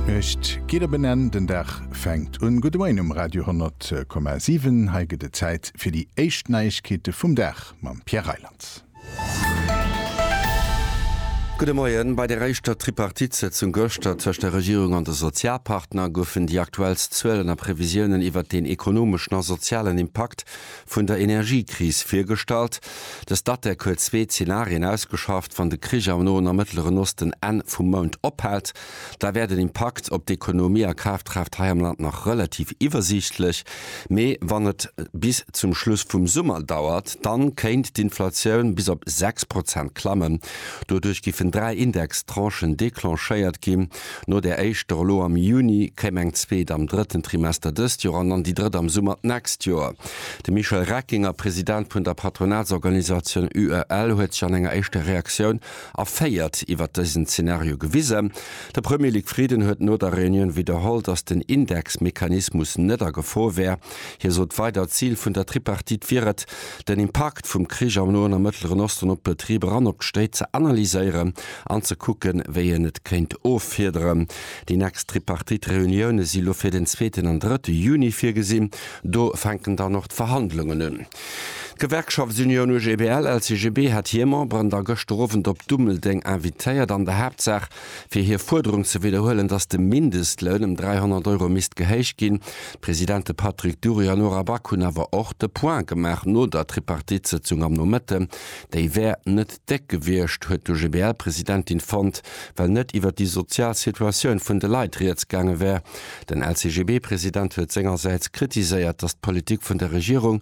D'Nuecht geet op en Enn, den Dag fänkt un. Gudde Moien um Radio 10,7. Hei gëtt et Zäit fir déi éischt Neiegkeete vum Dag mam Pierre Reyland. Gudde Moien. Bei der éischter Tripartite-Sëtzung gëschter tëscht der Regierung an de Sozialpartner goufen déi aktuellst Zuelen a Previsiounen iwwert deen ekonomeschen a sozialen Impakt vun der Energiekris virgestallt. De Statec huet zwee Zenarien ausgeschafft, Wann de Krich am Noen a Mëttleren Osten Enn vum Mount ophält, da wär den Impakt op d'Ekonomie a Kafkraaft hei am Land nach relativ iwwersiichtlech, mee wann et bis zum Schluss vum Summer dauert, da kéint d'Inflatioun bis op sechs Prozent klammen. Doduerch giffen dräi Indextranchen declenchéiert ginn. No där éischter elo am Juni kéim eng zweet am drëtten Trimester dëst Joer an dann déi drëtt am Summer d'nächst Joer. De Michel Reckinger, President vun der Patronatsorganisatioun UEL, huet sech an enger éischter Reaktioun erféiert iwwert dësen Zenario gewisen. De Premier Luc Frieden huet no der Reunioun widderholl, datt den Indexmechanismus net a Gefor wär. Hie sot weider, d'Zil vun der Tripartite wier et, den Impakt vum Krich am Noen a Mëttleren Osten op d'Betriber an op d'Stéit ze analyséieren an ze kucken, wéi een et kéint offiederen. Déi nächst Tripartite-Reunioune si lo fir den zweeten an drëtte Juni virgesinn. Do fänken dann och d'Verhandlungen un. D'Gewerkschaftsunioun UGBL-LCGB hat hir Memberen da gëschter Owend op Dummeldeng invitéiert. An der Haaptsaach fir hir Fuerderung ze widderhuelen, datt de Mindestloun ëm 300 Euro misst gehéicht ginn. D'Presidente Patrick Dury an Nora Back hunn awer och de Point gemaach no der Tripartite-Sëtzung am Nomëtten. Déi wär net déck gewiescht, huet d'OGBL-Presidentin fonnt, well net iwwer déi sozial Situatioun vun de Leit rieds gaange wär. Den LCGB-President huet sengersäits kritiséiert, datt d'Politik vun der Regierung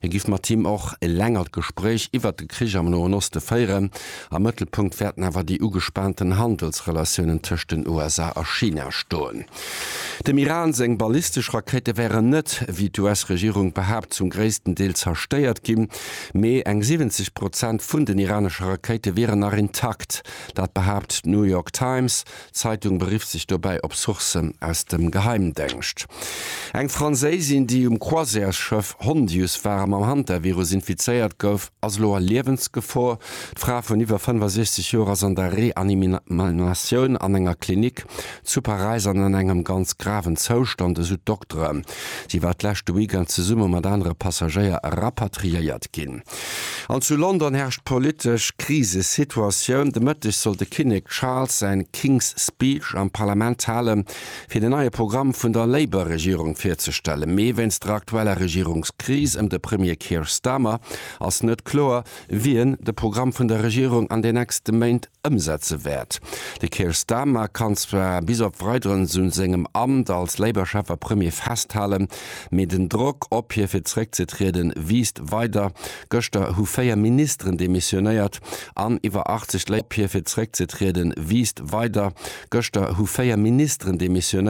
Hie giff mat him och e längert Gespréich iwwert de Krich am Noen Oste féieren. Am Mëttelpunkt wäerten awer déi ugespaanten Handelsrelatiounen tëscht den USA a China stoen. Dem Iran seng ballistesch Rakéite wären net, wéi d'US-Regierung behaapt, zum gréissten Deel zerstéiert ginn, mee eng 70 Prozent vun den iranesche Rakéite wieren nach intakt. Dat behaapt d'New York Times, D'Zeitung berifft sech dobäi op Sourcen aus dem Geheimdengscht. Eng Franséisin, déi um Croisièresschëff Hondius war a mam Hantavirus infizéiert gouf, ass elo a Liewensgefor. D'Fra vun iwwer 65 Joer ass an der Reanimatioun an enger Klinik zu Paräis an an engem ganz graven Zoustand, esou d'Dokteren. Si war d'leschte Weekend zesumme mat anere Passagéier rapatriéiert ginn. An zu London herrscht politesch Krisesituatioun. De Mëtteg soll de Kinnek Charles säi King's Speech am Parlament halen, fir den neie Programm vun der Labour-Regierung virzestellen. Mee wéinst der aktueller Regierungskris ëm de Premier Keir Starmer ass net kloer, wien de Programm vun der Regierung an den nächste Méint ëmsetze wäert. De Keir Starmer kann zwar bis op Weideres u sengem Amt als Labour-Chef a Premier festhalen, Mee den Drock op hie fir zeréckzetrieden, wiisst weider. Gëschter hu 4 Ministeren demissionéiert an iwwer 80 Leit op hie fir zeréckzetrieden, wiisst weider. Gëschter hu 4 Ministeren demissionéiert.